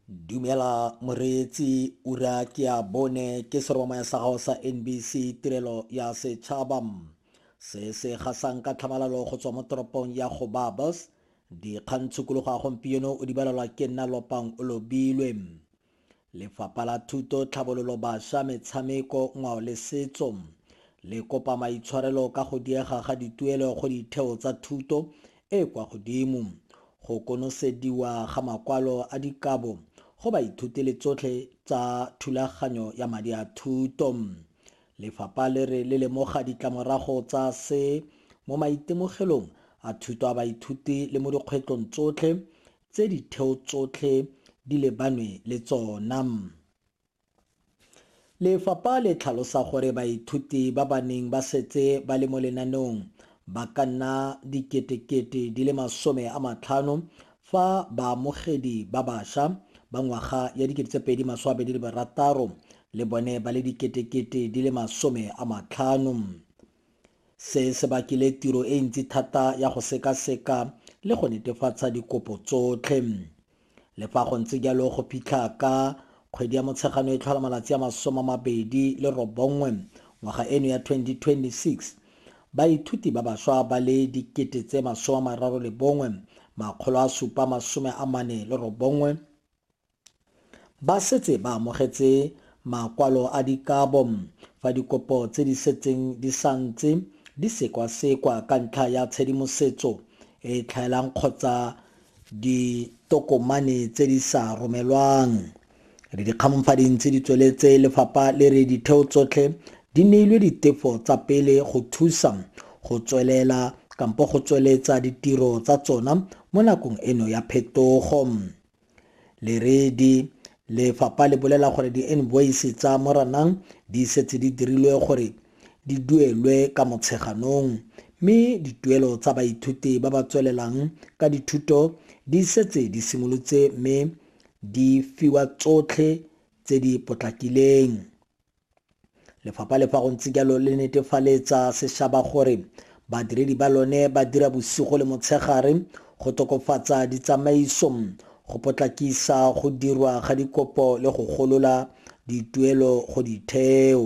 Dumela moreetsi ura ke ya bone ke seromamaya sa gago sa NBC tirelo ya setšhaba se se gasang ka tlhamalalo go tswa mo toropong ya go babas dikgang tshukologo ya gompieno o di balelwa ke nna lopang o lobilwe Lefapha la Thuto, Tlhabololo Baša, Metshameko, Ngwao le Setso le kopa maitshwarelo ka go diega ga dituelo go ditheo tsa thuto e e kwa godimo, go konosediwa ga makwalo a dikabo go baithuti le tsotlhe tsa thulaganyo ya madi a thuto. Lefapha le re le lemoga ditlamorago tsa se mo maitemogelong a thuto a baithuti le mo dikgwetlong tsotlhe tse ditheo tsotlhe di lebanwe le tsona. Lefapha le tlhalosa gore baithuti ba ba neng ba setse ba le mo lenaneong ba ka nna diketekete di le masome a matlhano fa baamogedi ba basha ba ngwaga ya 2026 le bone ba le diketekete di le masome a matlhano. Se se bakile tiro e ntsi thata ya go sekaseka le go netefatsa dikopo tsotlhe. Le fa go ntse jalo go fitlha ka kgwedi ya Motshegano e tlhola malatsi a masome a mabedi le robongwe ngwaga eno ya 2026, baithuti ba baswa ba le dikete tse masome a mararo le bongwe, makgolo a supa masome a mane le robongwe Ba setse ba amogetse makwalo a dikabo fa dikopo tse di setseng di sa ntse di sekwasekwa ka ntlha ya tshedimosetso e e tlhaelang kgotsa ditokomane tse di sa romelwang. Re dikgamong fa di ntse di tsweletse, lefapha le re ditheo tsotlhe di neilwe ditefo tsa pele go thusa go tswelela kampo go tsweletsa ditiro tsa tsona mo nakong eno ya phetogo. Leredi, Lefapha le bolela gore di-invoice tsa Moranang di setse di dirilwe gore di duelwe ka Motsheganong mme dituelo tsa baithuti ba ba tswelelang ka dithuto di setse di simolotse mme di fiwa tsotlhe tse di potlakileng. Lefapha le fa go ntse jalo le netefaletsa sešaba gore badiredi ba lone ba dira bosigo le motshegare go tokofatsa ditsamaiso, go potlakisa go dirwa ga dikopo le go golola dituelo go ditheo.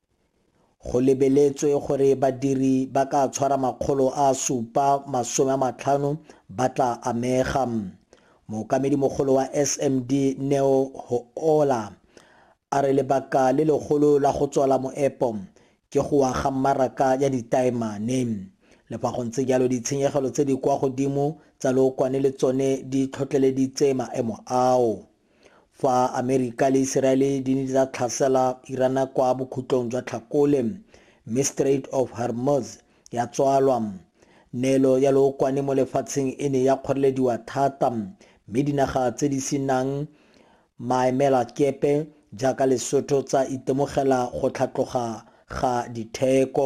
Go lebeletswe gore badiri ba ka tshwara makgolo a supa masome a matlhano ba tla amega. Mookamedimogolo wa SMD Neo Hoola a re lebaka le legolo la go tswala moepo ke go wa ga mmaraka ya ditaemane. Le fa go ntse jalo ditshenyegelo tse di kwa godimo tsa lookwane le tsone di tlhotlheleditse maemo ao. Fa Amerika le Iseraele di ne tsa tlhasela Irana kwa bokhutlong jwa Tlhakole mme Strait of Hormuz ya tswalwa, neelo ya lookwane mo lefatsheng e ne ya kgorelediwa thata mme dinaga tse di se nang maemelakepe jaaka Lesotho tsa itemogela go tlhatloga ga ditheko.